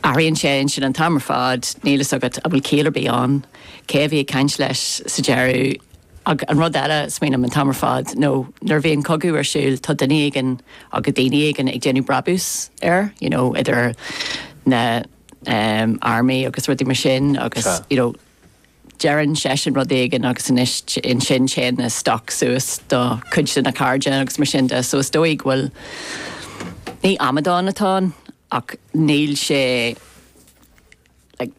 Athraíonn sé ansin an t-am ar fad. Níl a fhios agat an bhfuil ciall ar bith ann, cé a bhí ag caint leis sa deireadh. Ach an rud eile a smaoiním an t-am ar fad nó nuair a bhíonn cogadh ar siúl tá duine éigin agus daoine éigin ag déanamh brabús air, you know idir na hairm agus rudaí mar sin agus you know deireann seisean rud éigin agus anois ansin téann na stocks suas do cuid de na cairde agus mar sin de so is dóigh go bhfuil, ní amadán atá ann. ach níl sé like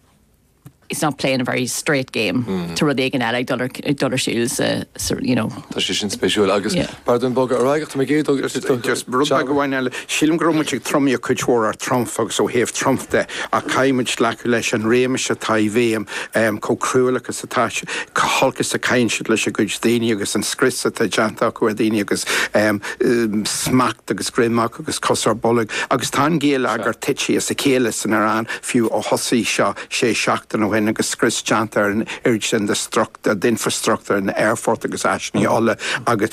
he's not playing a very straight game tá rud éigin eile ag dul ar ag dul ar siúl sa sa you know tá sé sin spéisiúil agus yeah pardon bogadh ar aghaidh ach tá mé ag dul just just rud beag amháin eile sílim go raibh muid ag tromaíocht cuid mhór ar Trump agus ó thaobh Trump de ach caithfidh muid glacadh leis an réimeas atá i bhfeidhm chomh cruálach agus atá sé chomh holc is a chaitheann siad lena gcuid daoine agus an scrios atá déanta acu ar dhaoine agus smacht agus greim acu agus cos ar bolg agus tá an géilleagar tite as a chéile san Iaráin fiú ó thosaigh seo sé seachtaine ó shin agus scrios déanta ar an oiread sin de infreastruchtúr na n-aerfort agus áiseanna ola agus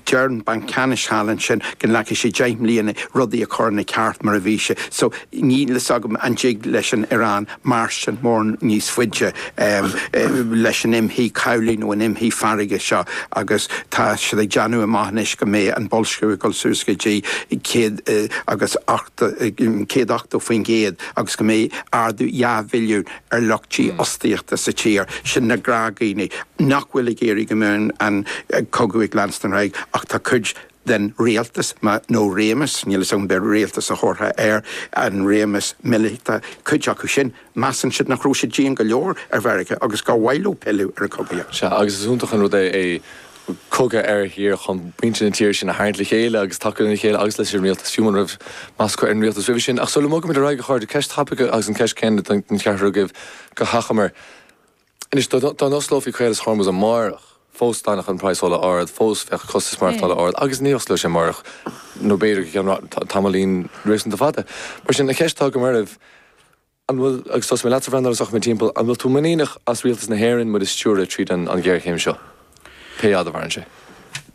deir an banc ceannais thall ansin go nglacfaidh sé deich mbliana rudaí a chur ina gceart mar a bhí sé so níl a fhios agam an dtig leis an Iaráin mairstean mórán níos faide leis an imshuí cabhlaigh nó an imshuí farraige seo agus tá siad ag déanamh amach anois go mbeidh an boilsciú ag dul suas go dtí céad agus ochta, céad ochtó faoin gcéad agus go mbeidh ardú dhá mhilliún ar lucht dífhostaíochta sa tír. Sin na gnáthdhaoine nach bhfuil ag iarraidh go mbeidh an cogadh ag leanstan ar aghaidh ach tá cuid den rialtas nó réimeas, níl fhios agam, arbh é rialtas a thabharfá ar an réimeas míleata, cuid acu sin, measann siad nach raibh siad dian go leor ar Mheiriceá agus gur mhaith leo pilleadh ar an gcogaíocht. Sea, agus is iontach an rud é cogadh ar thír chun muintir na tíre sin a tharraingt le chéile agus tacú lena chéile agus leis an rialtas, fiú muna raibh meas acu ar an rialtas roimhe sin. Ach sula mbogfaimid ar aghaidh, a chairde, ceist thapaidh agus an cheist chéanna don cheathrar agaibh go hachomair. Anois, dá n-osclófaí Caolas Hormuz amárach, fós d'fhanfadh an praghas ola ard, fós bheadh costais maireachtála ard agus ní osclóidh sé amárach nó b'fhéidir go ceann tamaillín réasúnta fada. Mar sin, an cheist atá agam oraibh, an bhfuil, agus tosóidh mé leatsa, a Bhreandáil, agus rachaidh mé timpeall, an bhfuil tú muiníneach as rialtas na hÉireann muid a stiúradh tríd an ghéarchéim seo? Pé fhad a mhaireann sé.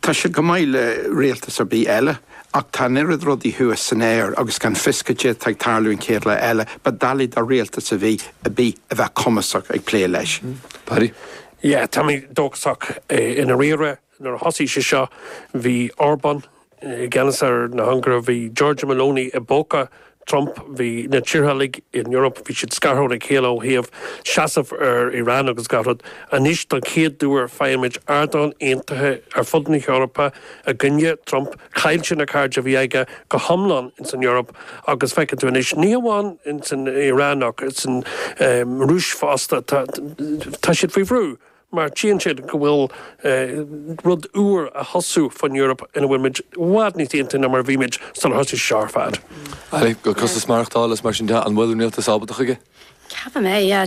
Tá sé chomh maith le rialtas ar bith eile, ach tá an oiread rudaí thuas san aer agus gan fios cad é atá ag tarlú an chéad lá eile, ba doiligh do rialtas ar bith a bheith cumasach ag plé leis. Paddy. Yeah, tá mé dóchasach. I ndáiríre, nuair a thosaigh sé seo, bhí Orbán, i gceannas ar an Ungáir, bhí Giorgia Meloni i bpóca Trump. Bhí na tíortha uilig in Eoraip, bhí siad scartha óna chéile ó thaobh seasamh ar Iran agus gach rud. Anois don chéad uair feicimid ardán aontaithe ar fud na hEorpa i gcoinne Trump. Chaill sé na cairde a bhí aige go hiomlán ins an Eoraip agus feiceann tú anois, ní hamháin ins an Iran ach ins an Rúis fosta, tá siad faoi bhrú. mar tchíonn siad go bhfuil rud úr á thosú fán Eoraip ina bhfuil muid i bhfad níos aontaithe ná mar a bhí muid sular thosaigh sé seo ar fad. Go costas maireachtála is mar sin de, an bhfuil an rialtas ábalta chuige? Ceapaim é, yeah.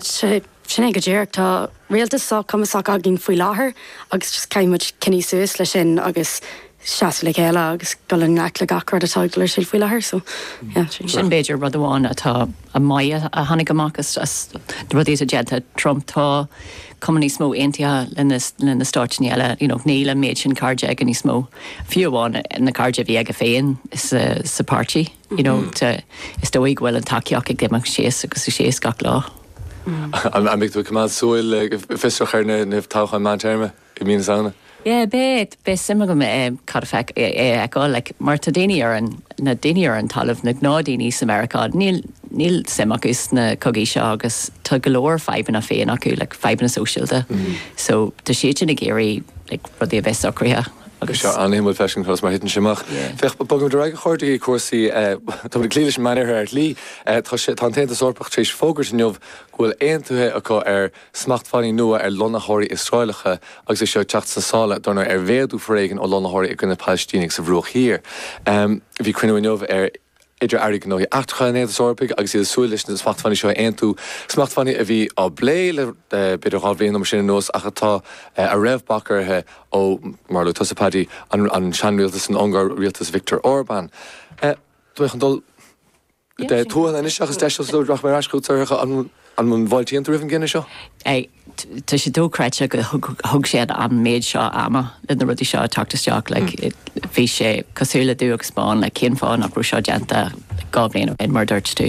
Sin é go díreach. Tá rialtas sách cumasach againn faoi láthair agus just caithfidh muid coinneáil suas leis sin agus seasamh le chéile agus dul i ngleic le gach rud atá ag dul ar aghaidh faoi láthair so yeah sin. Sin b'fhéidir rud amháin atá maith a tháinig amach as rudaí atá déanta ag Trump, tá cuma níos mó aontaithe leis na stáit eile, you know níl an méid sin cairde aige níos mó, fiú amháin na cairde a bhí aige féin sa páirtí, you know is dóigh go bhfuil an tacaíocht ag imeacht síos agus síos gach lá. An mbeidh tú ag coimeád súil go fiosrach ar na toghcháin meántéarma? i mí na Samhna? Yeah beidh, beidh suim agam i cad a feic, i a fheiceáil like mar tá daoine ar an, na daoine ar an talamh, na gnáthdhaoine i Meiriceá níl, níl suim acu sna cogaí seo agus tá go leor fadhbanna féin acu like fadhbanna sóisialta so tá siad sin ag iarraidh like rudaí a bheith socraithe agus tá sé an-suimiúil freisin conas mar a thiteann sé amach. Yeah. Féach, bogaimid ar aghaidh a chairde go cúrsaí eh, táimid ag cloí leis an Meánoirthear ar shlí, eh tá sé, tá an tAontas Eorpach tar éis fógairt inniu go bhfuil aontaithe acu ar, Smachtbhannaí nua ar lonnaitheoirí Iosraelacha agus é seo ag teacht sna sála dar ndóigh ar mhéadú foréigin ó lonnaitheoirí i gcoinne Palaistínigh sa Bhruach Thiar. Bhí cruinniú inniu idir airí gnóthaí eachtracha an Aontais Eorpaigh agus iad ag súil leis na smachtbhannaí seo a aontú, smachtbhannaí a bhí á bplé le b'fhéidir dhá bhliain nó mar sin anuas ach a raibh bac orthu ó, mar a luaigh tusa Paddy, an seanrialtas san Ungáir, rialtas Viktor Orbán. Tá mé chun dul. tuathal anois seachas deiseal so rachaidh mé ar ais chuig Saoirse an an bhfuil tú fáilteach roimh an gcinneadh seo? Tá sé dóchreidte go thug sé an méid seo ama le na rudaí seo teacht isteach. Bhí sé cosúil le dubh agus bán like cén fáth nach raibh seo déanta dhá bhliain ó shin mar a dúirt tú.